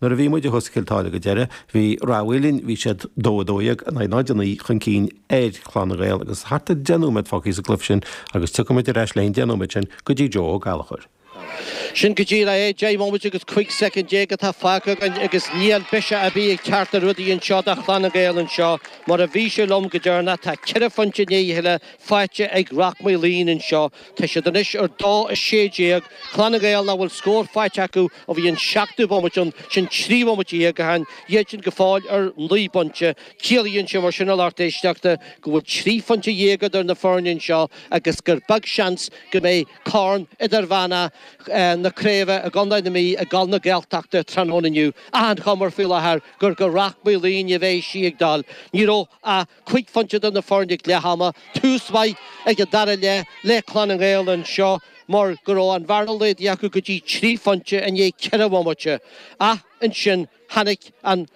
Nuair a bhí muid i gCluas Chill Táile go deireadh, bhí Ráth Maoilín, bhí siad dó dó dhéag in aghaidh náid a naoi chun cinn ar Chlann na Gael agus thart ar deich nóiméad fágthaí sa gcluiche sin agus tiocfaidh muid ar ais le an deich nóiméad sin go dtí Joe Ó Gallchóir. Sin go dtí é, deich nóiméad agus cuig soicind déag atá fágtha againn agus níl aon bhiseach a bhí ag cearta rudaí anseo do Chlann na Gael anseo mar ó bhí sibh liom go deireanach, tá ceithre phoinnte in aghaidh a chéile faighte ag Rath Maoilín anseo. Tá siad anois ar dó a sé déag, Clanna Gael nach bhfuil scór faighte acu ó bhí an seachtú bomaite ann, sin trí bhomaite dhéag, ó shin, iadsan go fóill ar naoi bpointe. Ciallaíonn sé mar sin, a lucht éisteachta, go bhfuil trí phointe dhéag idir na foirne anseo agus gur beag seans go mbeidh corn Idirmheánach na Craoibhe i gContae na Mí ag dul na Gaeltachta tráthnóna inniu. Achan chuma faoi láthair gur go Rath Maoilín a bheas sí ag dul. Ní raibh a. Cúig phointe idir na foirne ag leath ama, tús maith ag an dara leath le Clann na nGael anseo mar go raibh an bhearna laghdaithe acu go dtí trí phointe i ndiaidh ceithre bhomaite ach ansin tháinig an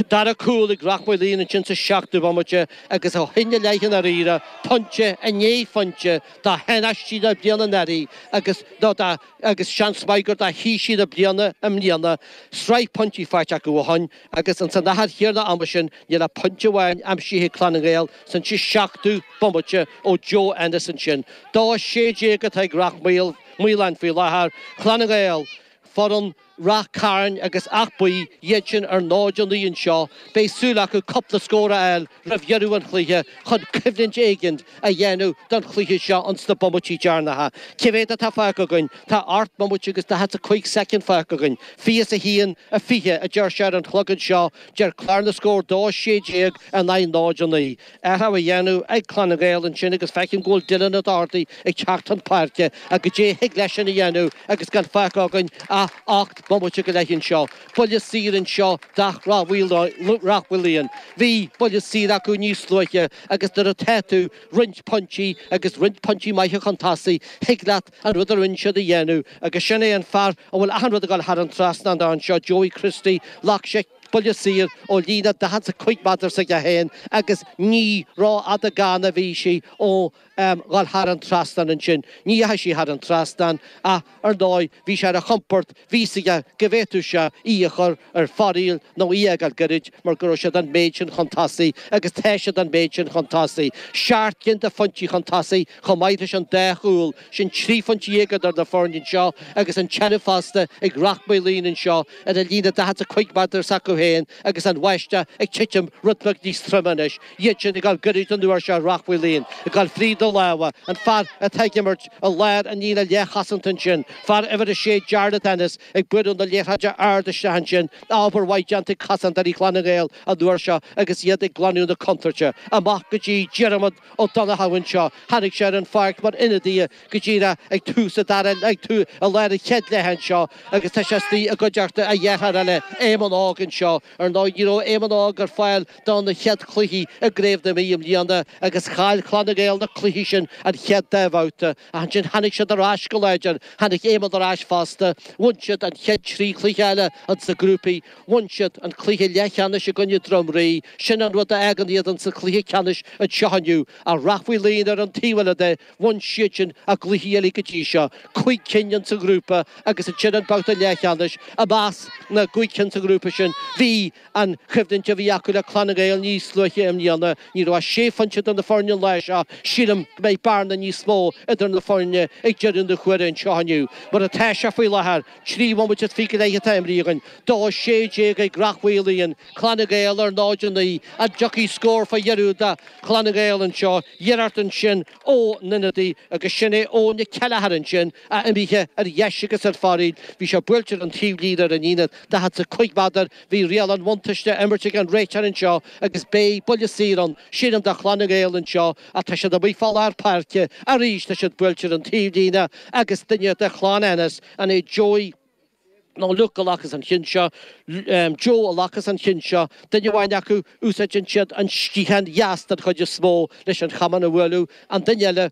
dara cúl ag Rath Maoilín ansin sa seachtú bomaite agus ó shin i leith i ndáiríre, pointe i ndiaidh phointe, do thánaistí na bliana anuraidh agus ar ndóigh agus seans maith gur do thaoisigh na bliana i mbliana, sraith pointí faighte acu ó shin. Agus ins an achar chéanna ama sin níl aon phointe amháin aimsithe ag Clann na nGael san ón seachtú bomaite ó Joe Ennis ansin. Dó sé déag atá ag Rath Maoilín faoi láthair, Clann na nGael, foireann Rath Cairn agus Áth Buí, iad sin ar ndóigh náid a naoi anseo, beidh súil acu cúpla scór a fháil roimh dheireadh an chluiche chun coimhlint éigin a dhéanamh don chluiche seo ins na bomaití dearnacha. Cé mhéad atá fágtha againn? Tá ocht mbomaite agus daichead 's a cuig soicind fágtha againn. Fiche 's a haon, a fiche, a deir sé ar an chlog anseo, deir Clár na Scór dó, a sé déag in aghaidh náid a naoi. Athrach á dhéanamh ag Clann na nGael ansin agus feicim go bhfuil Dillon Ó Dochartaigh ag teacht chun páirce ach goidé thig leis sin a dhéanamh agus gan fágtha againn ach ocht mbomaite go leith anseo. Buille saor anseo do Rath Maoilín. Bhí buille saor acu níos luaithe agus nuair atá tú roinnt pointí, agus roinnt pointí maithe chun tosaigh, thig leat an rud a rinne siad a dhéanamh agus sin é an fear a bhfuil achan rud ag dul thar an trasnán dó anseo, Joey Christie, ghlac sé buille saor ó líne 45 méadar s'acu féin agus ní rófhada gann a bhí sí ó dhul thar an trasnán ansin. Ní dheachaigh sí thar an trasnán ach ar ndóigh bhí sé ar a chompord, bhí 'fhios aige go bhféadfadh sé í a chur ar foraíl nó í a fhágáil goirid mar go raibh siad an méid sin chun tosaigh agus tá siad an méid sin chun tosaigh. Seacht gcinn de phointí chun tosaigh chomh maith leis an dá chúl sin, trí phointe dhéag idir na foirne anseo agus an cheannacht fosta ag Rath Maoilín anseo ar an líne daichead 's a cuig méadar s'acu féin agus an bháisteach ag titim rudbheag níos troime anois. Iad sin ag gabháil gairid don uair seo, Ráth Mhaoilíonn ag dul fríd na lámha, an fear atá ag imirt i lár an líne leathchosanta ansin, fear uimhir a sé Jarlath Ennis ag bualadh na liathróide ard isteach ansin, obair mhaith déanta ag cosantóirí Chlann na nGael an uair seo agus iad ag glanadh na contúirte. Amach go dtí Diarmaid Ó Donnchadha anseo, tháinig sé ar an pháirc mar ionadaí go díreach ag tús an dara leath, ag i lár an chéad leithe anseo agus tá sé istigh i gcuideachta a dhearthára eile, Éamonn Óg anseo. Ar ndóigh ní raibh Éamonn Óg ar fáil, do na chéad chluichí i gCraobh na Mí i mbliana agus chaill Clann na nGael na cluichí sin an chéad dá bhabhta ach ansin tháinig siad ar ais go láidir, tháinig Éamonn ar ais fosta, bhain siad an chéad trí chluiche eile ins na grúpaí, bhain siad an cluiche leathcheannais i gcoinne Droim Rí, sin an rud a fhágann iad ins an chluiche ceannais anseo inniu, ach Ráth Mhaoilíonn ar an taobh eile de, bhain siadsin a gcluichí uilig go dtí seo, cúig cinn ins an ghrúpa agus ansin an babhta leathcheannais, i measc na gcúig cinn sa ghrúpa sin bhí. An choimhlint a bhí acu le Clanna Gael níos luaithe i mbliana, ní raibh ach sé phointe idir na foirne an lá sin, sílim go mbeidh bearna níos mó idir na foirne ag deireadh na huaire anseo inniu. Mar atá sé faoi láthair, trí bhomaite is fiche go leith atá imrithe againn, dó is sé déag ag Ráth Mhaoilíonn, Clanna Gael ar 0-9, an dtiocfaidh scór faoi dheireadh do Chlanna Gael anseo? Iarracht ansin ó Nunaddy agus sin é Eoin Ó Ceileachair ansin, Á imithe ar dheis agus ar foraoil, bhí sé buailte ar an taobhlíne ar an líne, daichead is a cúig méadar, bhí riail an bhuntáiste á imirt ag an réiteoir anseo agus beidh buille saor ann, sílim, do Chlann na nGael anseo, ach tá siad amuigh fá lár páirce arís, tá sé buailte ar an taobhlíne agus duine de chlann Ennis, an é Joey nó Luke a ghlacfas an cionn seo, Joe a ghlacfas an cionn seo, duine amháin acu, úsáideann sé an sciathán dheas den chuid is mó leis an chamán a bhualadh, an duine eile,